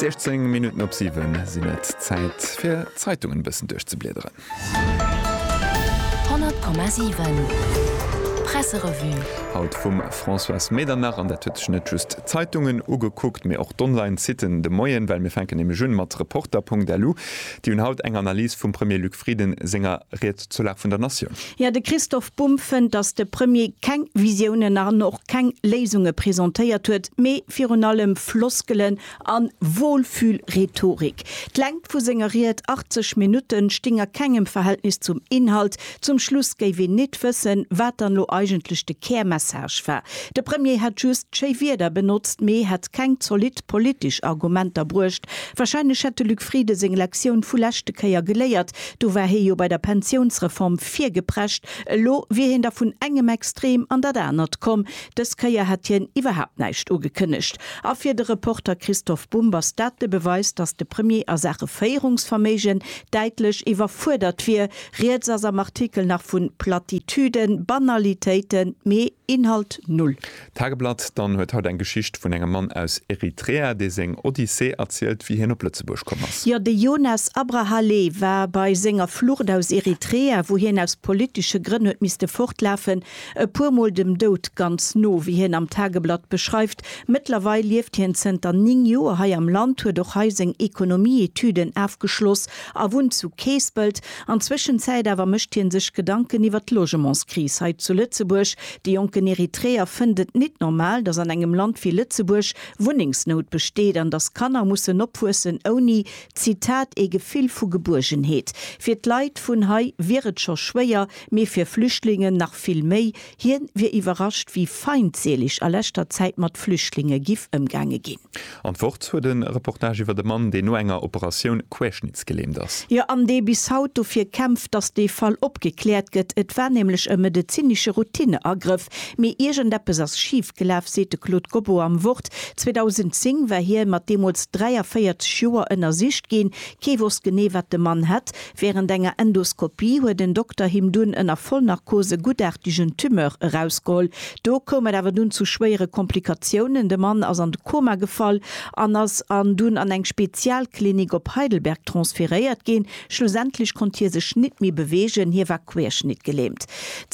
16 Minutten op 7 sinn et. Zäit fir d'Zeitungen e bëssen duerchzebliederen. 100,7 Presserevue Haut vum Françoise Medernach an dat huet sech net just d'Zeitungen ugekuckt, mee och d'Online-Siten. De Moien, well mir fänken nämlech un mat Reporter.lu. Déi hunn haut eng Analys vum Premier Luc Frieden senger Ried. Zur Lag vun der Natioun. Jo, de Christoph Bumb fënnt, datt de Premier keng Visiounen an och keng Léisunge presentéiert huet, mee virun allem Floskelen a Wohlfühl-Rhetorik. D'Längt vu senger Ried, 80 Minutten, sting a kengem Verhältnis zum Inhalt. Zum Schluss géif een nit wëssen, wat dann elo eigentlech de Kärmessage war. De Premier hätt just schéi Wieder benotzt, mee hätt keng zolidd politesch Argumenter bruecht. Wahrscheinlech hätt de Luc Frieden seng Lektioun vu leschte Kéier geléiert, Do war hie jo bei der Pensiounsreform virgeprescht, elo wier hien da vun engem Extrem an dat anert komm. Dës Kéier hätt hien iwwerhaapt näischt ugekënnegt. A fir de Reporter Christoph Bumb ass dat de Beweis, datt de Premier a Saache Féierungsverméigen däitlech iwwerfuerdert wier. Rieds ass am Artikel nach vu Plattitüden, Banalitéiten, mee Inhalt null. D'Tageblatt dann huet haut eng Geschicht vun engem Mann aus Eritrea, dee seng Odyssee erzielt, wéi hien op Lëtzebuerg komm ass. Jo, de Yonas Abrahalle war bei senger Flucht aus Eritrea, wou hien aus politesche Grënn huet misste fortlafen, e puer Mol dem Doud ganz no, wéi hien am Tageblatt beschreift. Mëttlerweil lieft hien zënter 9 Joer hei am Land, huet och hei seng Ekonomie-Etüden afgeschloss a wunnt zu Keespelt. An Zwëschenzäit awer mécht hie sech Gedanken iwwer d'Logementskris hei zu Lëtzebuerg. De jonken Eritreer fënnt et nit normal, dass an engem Land wéi Lëtzebuerg Wunnengsnout besteet an dass Kanner mussen opwuessen ouni, Zitat, ee Gefill vu Gebuergenheet. Fir d'Leit vun hei wier et scho schwéier, mee fir Flüchtlingen nach vill méi. Hien wier iwwerrascht, wéi feindseeleg a leschter Zäit mat Flüchtlinge giff ëmgaange gin. An d'Wort huet e Reportage iwwert e Mann, deen no enger Operatioun querschnittsgelähmt ass. Jo, an dee bis haut dofir kämpft, datt dee Fall opgekläert gëtt. Et war nämlech e medezinesche Routineagrëff, mee iergendeppes ass schif gelaf, seet de Claude Gobot am Wort. 2010 war hie mat deemools 43 Joer ënnersicht ginn. Kee wosst genee, wat de Mann hätt. Während enger Endoskopie huet en Dokter him dunn ënner Vollnarkos e guttartigen Tumeur erausgeholl. Do koum et awer dunn zu schwéiere Komplikatiounen, de Mann ass an de Koma gefall an ass an dunn an eng Spezialklinik op Heidelberg transferéiert ginn. Schlussendlech konnt hie sech nit méi bewegen, hie war querschnittgelähmt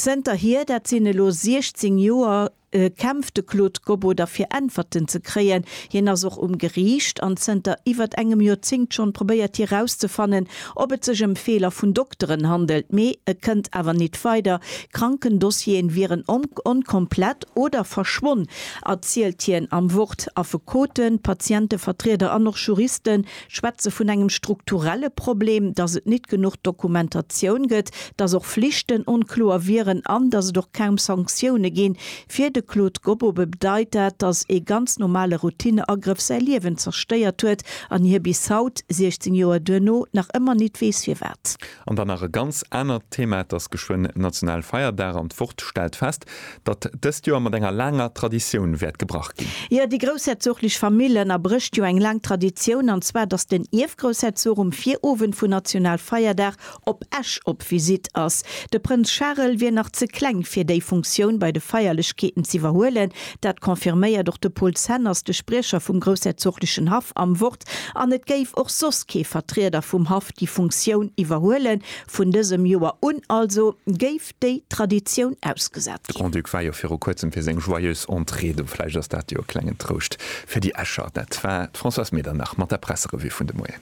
zënterhier, dat sinn elo 16 Joer. kämpft de Claude Gobbo da fir Äntwerten ze kréien. Hien ass och um Geriicht an zënter iwwert engem Joerzéngt schonn probéiert hie rauszefannen, ob et sech ëm Feeler vun Dokteren handelt, mee e kënnt awer nit weider. Krankendossieren wieren onkomplett oder verschwonn, erzielt hien am Wort. Affekoten, Patientevertrieder an och Juristen schwätze vun engem strukturelle Problem, dass et nit genuch Dokumentatioun gëtt, dass och Flichten onkloer wieren an dass et och kaum Sanktioune ginn. Fir de Claude Gobobe bedeit dat, dass ee ganz normale Routineagrëff säi Liewen zerstéiert huet an hie bis haut, 16 Joer duerno, nach ëmmer nit weess firwat. An dann nach e ganz anert Thema, et ass geschwënn national Feierdag an d'Wort stellt fest, datt dëst Joer mat enger laanger Traditioun wäert gebrach ginn. Jo, déi groussherzoglich Famill ënnerbrécht jo eng laang Traditioun, an zwar datt den Ierfgroussherzog um Virowend vun national Feierdag op Esch op Visitt ass. De Prënz Charel wier nach ze kleng fir déi Funktioun bei de Feierlechkeeten z'iwwerhuelen. Dat confirméiert och de Paul Zenners, de Spriecher vum groussherzoglichen Haff am Wort. Aspekt an et géif och soss kee Vertrieder vum Haff déi Funktioun iwwerhuelen. Vun dësem Joer un also géif déi Traditioun ausgesat De ginn. Grand-Duc war jo viru kuerzem fir seng joyeuse Entrée do, vläicht ass dat jo e klengen Trouscht fir déi Escher. Dat war d'Françoise Medernach mat der Presserevue vun de Moien.